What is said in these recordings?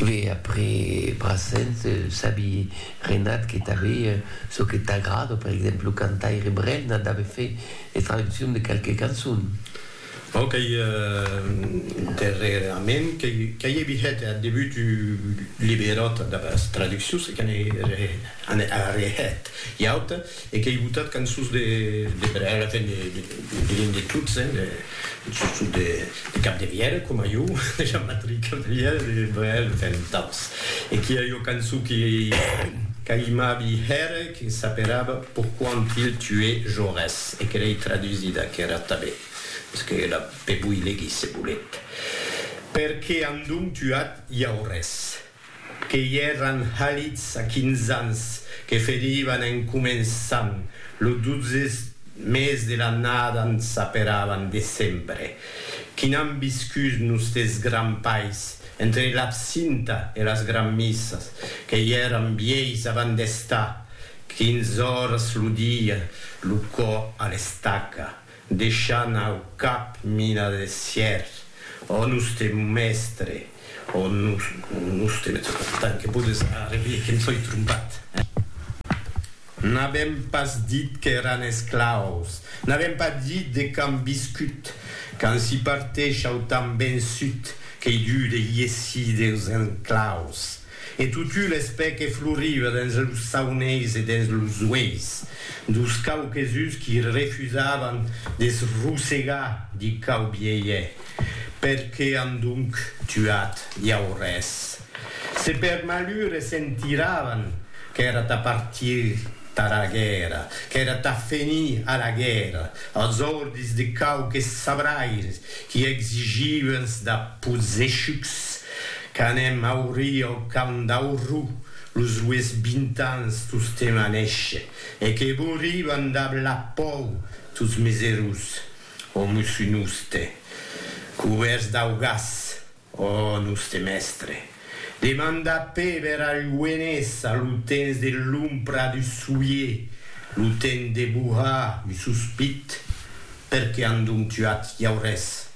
Ve après Brassens, sabi Renat que tanbe çò que t'agrada, per exemple lo cantaire Brel n'a dave fait es traduccions de qualques cançons. Bon, qu'ei darrerament qu'ei evi hèt ath debut du liberòt damb as traduccions e que n'ei arren hèt ua auta. E qu'ei botat cançons de per ara que ne dirien de tots, sustot de Capdevièlh, coma jo, de Jean-Patric Capdevièlh, de Brel, enfin d'autres. E qu'i a ua cançon que qu'aimavi hèr e que s'aperava Pourquoi ont-il tué Jaurès? e que l'ei tradusida, qu'era tanben, mès que la pe voi legir se volet, Perqué an donc tuat Jaurès? que i èran halits a quinze ans, que ferivan en començant lo dotze mes de l'annada n s'aperavan decembre, qui n'an viscut nostes grands pais, entre l'absinta e las granmissas, que i èran vièis avant d'estar quinze oras lo dia lo cò a l'estaca. Deishant au cap mina de sièr, ò noste mèstre, ò noste mèstre, tant que podes arrevier que em soi trompat, eh? N'avèm pas dit qu'èran esclaus, n'avèm pas dit de quand viscut, quand s'i parteish au temps vençut, qu'ei dur de iessir deus enclaus. E totu l'espè que floriva dens los sauneis e dens los ueis dos quauquesuns qui refusavan de se rosegar di quau bielhe, per que an donc tuat Jaurès? Se per malur e se'n tiravan qu'èra tà partir tara guèrra, qu'èra tà fenir a la guèrra, als ordis de quauques sabraires qui exigivans da possechucs Qu'anem aurir au camp d'Aurrou los rues bintans tostemp a néisher, e que bouriban dab la pòu tots mes erós, o mosso noste, cubèrts dau gas. Ò noste mèstre! demanda Péber al Lluenés a lo temps de l'ompra du soulier, lo temps de bohar un sospit, per qué an donc tuat Llaurés?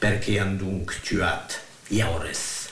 Perqué an donc tuat Jaures?